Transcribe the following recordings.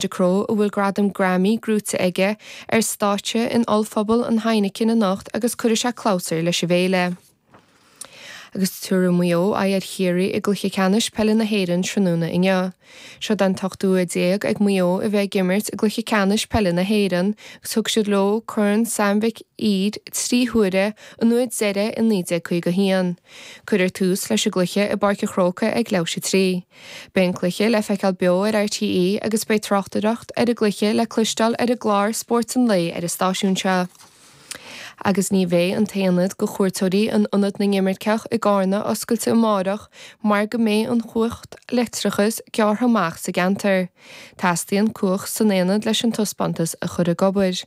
Ducrot, a bhfuil gradam Grammy gnóite aige, ar stáitse in ollphuball an Heineken anocht agus cuirfidh sé clabhsúr leis an bhféile. Agus tabharfaidh Maigh Eo aghaidh ar Chiarraí i gcluiche ceannais peile na hÉireann tráthnóna inniu, seo'd an t-ochtú huair déag ag Maigh Eo a bheith ag imirt i gcluiche ceannais peile na hÉireann agus thug siad leo Corn Sam Mhic Uidhir trí huaire an uair deiridh i 1951. Cuirfear tús leis an gcluiche i bPáirc an Chrócaigh ag leathuair tar éis a 3. Beidh an cluiche le feiceáil beo ar RTÉ agus beidh tráchtaireacht ar an gcluiche le cloisteáil ar an gclár Spórt an Lae ar an stáisiún seo. Agus ní bheidh an t-aonad do chuairteoirí in Ionad na nImirceach i gCarna oscailte amárach mar go mbeidh an chumhacht leictreachais gearrtha amach sa gceantar. Teastaíonn cumhacht san aonad leis an taispeántas a chur ag obair.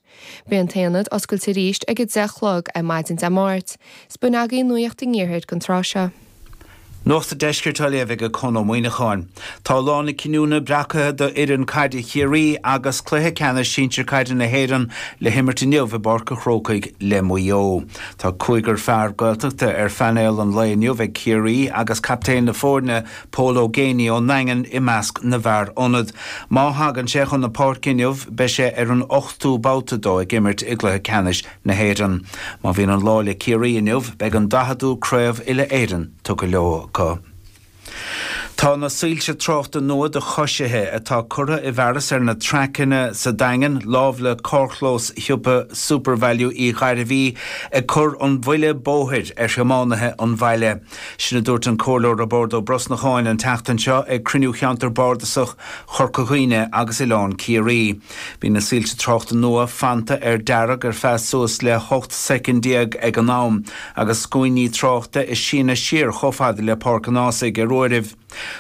Beidh an t-aonad oscailte arís ag a deich a chlog ar maidin Dé Máirt, is b'in agaí nuaíocht an iarthair don tráth seo. Nuacht an Deiscirt á léamh ag Conn Ó Muíneacháin. Tá lá na cinniúna breacaithe do fhoireann caide Chiarraí agus cluiche ceannais sinsir caide na hÉireann le himirt inniu i bPáirc a' Chrócaigh le Maigh Eo. Tá cúigear fear Gaeltachta ar phainéal an lae inniu ag Ciarraí agus captaen na foirne, Pól Ó Géibheannaigh ón nDaingean i measc na bhfear ionad. Má thagann sé chun na páirce inniu, beidh sé ar an ochtú babhta dó ag imirt i gcluiche ceannais na hÉireann. Má bhíonn an lá le Ciarraí inniu, beidh an daicheadú craobh uile-Éireann tugtha leo acu. Tá na soilse tráchta nua do choisithe, atá curtha i bhfearas ar na traiceanna sa Daingean lámh le carrchlós shiopa SuperValu Uí Ghairbhí, ag cur an-bhuile bóthair ar thiománaithe an bhaile. Sin a dúirt an Comhairleoir Roibeárd Ó Brosnacháin an tseachtain seo ag cruinniú Cheantar Bardasach Chorca Dhuibhne agus Oileán Ciarraí. Bhí na soilse tráchta nua fanta ar dearg ar feadh suas le 18 soicind ag an am agus scuainní tráchta ag síneadh siar chomh fada le Páirc an Ághasaigh ar uairibh.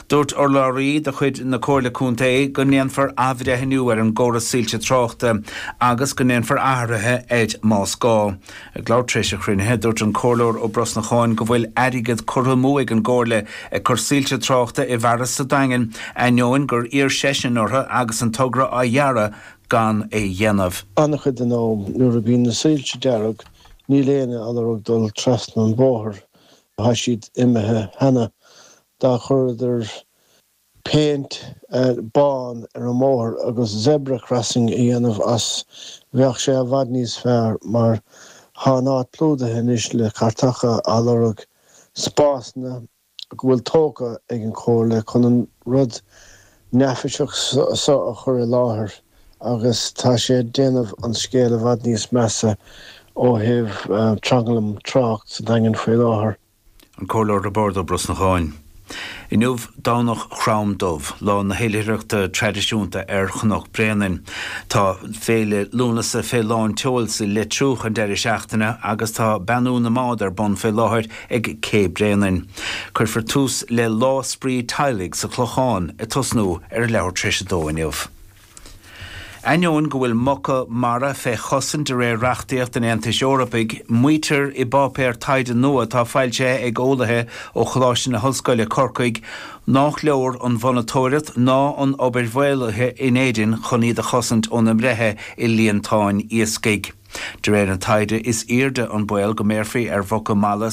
Dúirt urlabhraí de chuid na Comhairle Contae go ndéanfar athbhreithniú ar an gcóras soilse tráchta agus go ndéanfar athruithe air más gá. Ag labhairt tar éis an chruinnithe, dúirt an Comhairleoir Ó Brosnacháin go bhfuil airgead curtha amú ag an gComhairle ag cur soilse tráchta i bhfearas sa Daingean ainneoin gur iarr seisean orthu agus an togra á dhearadh gan é a dhéanamh. An-chuid den am, nuair a bhíonn na soilse dearg, níl éinne ag lorg dul trasna an bhóthair. Tá siad imithe cheana. Dá gcuireadar péint bán ar an mbóthar agus zebra crossing a dhéanamh as bheadh sé i bhfad níos fearr mar tá an áit plúdaithe anois le cairteacha ag lorg spásanna go bhfuil tógtha ag an Chomhairle chun an rud neafaiseach so a chur i láthair. agus tá sé ag déanamh an scéil i bhfad níos measa ó thaobh tranglam tráchta sa Daingean faoi láthair. An Comhairleoir Roibeárd Ó Brosnacháin. Inniu Domhnach Chrom Dubh, lá na hoilithreachta traidisiúnta ar Chnoc Bréanainn. Tá Féile Lúnasa fé lán tseoil sa Leitriúch an deireadh seachtaine agus tá Beannú na mBád ar bun fé láthair ag Cé Bréanainn. Cuirfear tús le Lá Spraoi Teaghlaigh sa Chlochán ag tosnú ar a leathuair tar éis a dó inniu. Ainneoin go bhfuil muca mara fé chosaint de réir reachtaíocht an Aontais Eorpaigh, maítear i bpáipéar taighde nua atá foilsithe ag eolaithe ó Choláiste na hOllscoile, Corcaigh, nách leor an mhonatóireacht ná an obair mhaolaithe in Éirinn chun iad a chosaint óna mbreithe i líontáin iascaigh. De réir an taighde, is airde an baol go mbéarfaí ar mhuca mara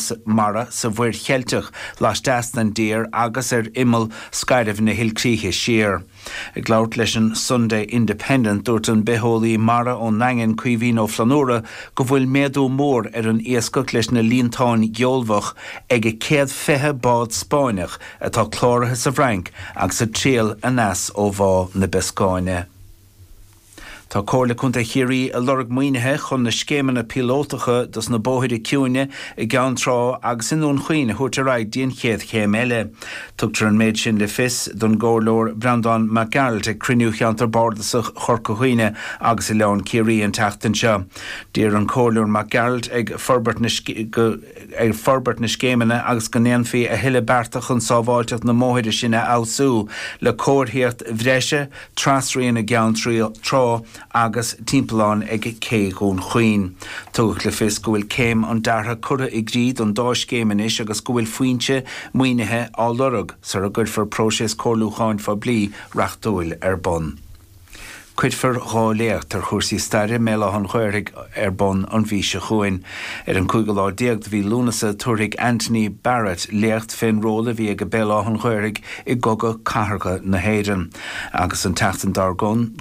sa Mhuir Cheilteach laisteas den dtír agus ar imeall scairbh na hilchríche siar. Ag labhairt leis an Sunday Independent, dúirt an bitheolaí mara ón nDaingean, Caoimhín Ó Flannúra, go bhfuil méadú mór ar an iascach leis na líontáin gheolbhach ag an 120 bád Spáinneach atá cláraithe sa bhFrainc agus ag triall aneas ó Bhá na Bioscáine. Tá Comhairle Contae Chiarraí ag lorg maoinithe chun na scéimeanna píolótacha dos na bóithre ciúine i gCeann Trá agus i nDún Chaoin a thabhairt ar aghaidh go dtí an chéad chéim eile. Tugadh an méid sin le fios don gComhairleoir Breandán Mac Gearailt ag cruinniú Cheantar Bardasach Chorca Dhuibhne agus Oileán Ciarraí an tseachtain seo. D'iarr an Comhairleoir Mac Gearailt go bhforbrófaí na scéimeanna agus go ndéanfaí a thuilleadh bearta chun sábháilteacht na mbóithre sin a fheabhsú le comharthaíocht bhreise, Trasrian i gCeann Trá agus timpeallán ag Cé Dhún Chaoin. Tugadh le fios go bhfuil Céim an Deartha curtha i gcrích don dá scéim anois agus go bhfuil foinse maoinithe á lorg sar a gcuirfear próiseas comhairliúcháin phoiblí reachtúil ar bun. Cuirfear dhá léacht ar chúrsaí staire i mBéal Átha an Ghaorthaidh ar bun an mhí seo chugainn. Ar an cúigiú lá déag de mhí Lúnasa tabharfaidh Anthony Barrett léacht fén ról a bhí aige Béal Átha an Ghaorthaidh i gCogadh Cathartha na hÉireann, agus an tseachtain dár gcionn,